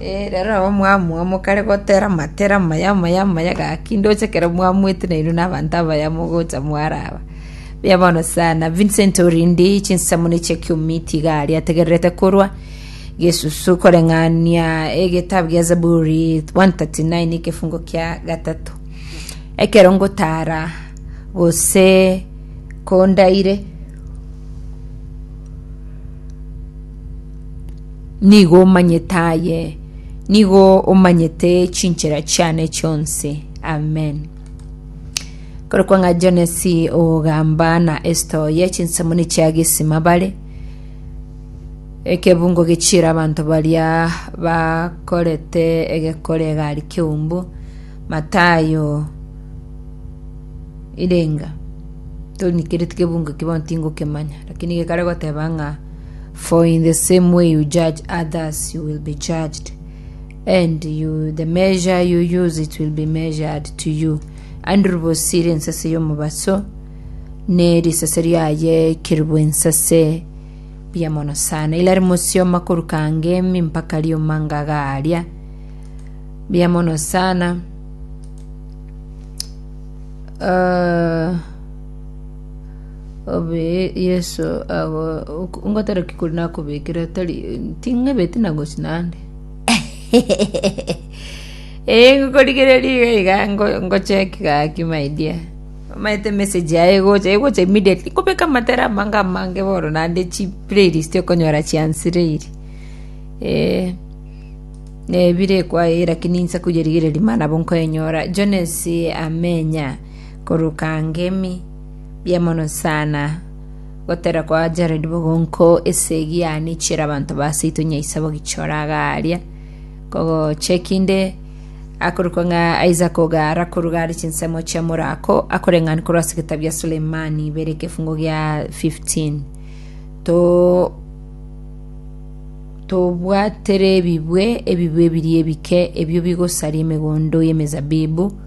Rero nabo mwamua mokare gotera amatera amaya amaya amaya gaki ndoche ekero mwamwete na inwe na abanto abaya mogocha mwaraba. Buya bono sana Vincent Orindi chinsemo ne chia kiumi tiga ari ategererete korwa gesusu koreng'ania egetabu gia Zaburi 139 ekefungo kia gatato ekero ngotara gose kondaire Nigo omanyete aye, nigo omanyete chinchera chiane chionsi. Amen. Kore kwang'a Jonesi ogamba na Esta oye chinsemo nichia gesima bare, ekebungo gechiira abanto baria bakorete egekore egari keumbu, Matayo irenga. Tori nikereti kebungo eki bono tingokemanya, lakini gekare goteba ng'a For in the same way you judge others, you will be judged, and you, the measure you use, it will be measured to you. And ribosi rinsase y'omobaso, ne risase riaye keribu ensase bia mono sana. Ila rimosioma koruka ngemi mpaka riuma ngagaria bia mono sana. Uh, Obee, Yeso ago ok- ngotera ki kori nakobekire tari ting'ebeti na gochi naende? Ee, ngokorigereria iga iga ngo- ngoche ki gaki my dear. Omanyete emessage yaye egocha egocha immediately. Nkobeka amatera amange amange bono naende chiplaylist okonyora chiansireiri. Ee, nebire kwaye lakini inse koyerigereria mara nabo nkoyenyora. Jones Amenya. Korwa Kangemi, mbuya mono sana gotera kwa Jared Bogonko ase egiani chiera abanto ba seito nyaisa bogichora iga aria kogocheki inde akorokwa ng'a Isaac Ogara korwa gare chinsemo chia Morako akoreng'ani korwa ase egetabu gia Sulemani ibere ekefungo gia 15 to tobwatere ebibwe ebibwe ebiria ebike ebio bigosaria emegondo y'emezabibu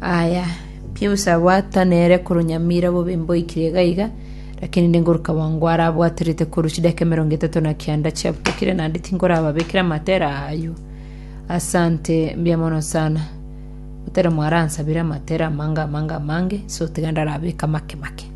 Aye, Pius abwata nere korwa nyamira bobe mboikire iga iga, lakini ningoruka bwango are abwaterete korwa chidaka emerongo etato na kianda chiabokire naende tinkorababekera amatera ayio. Asante mbuya mono sana. Otera mwaransabire amatera amange amange amange, nse otiga ndarabeke amake make.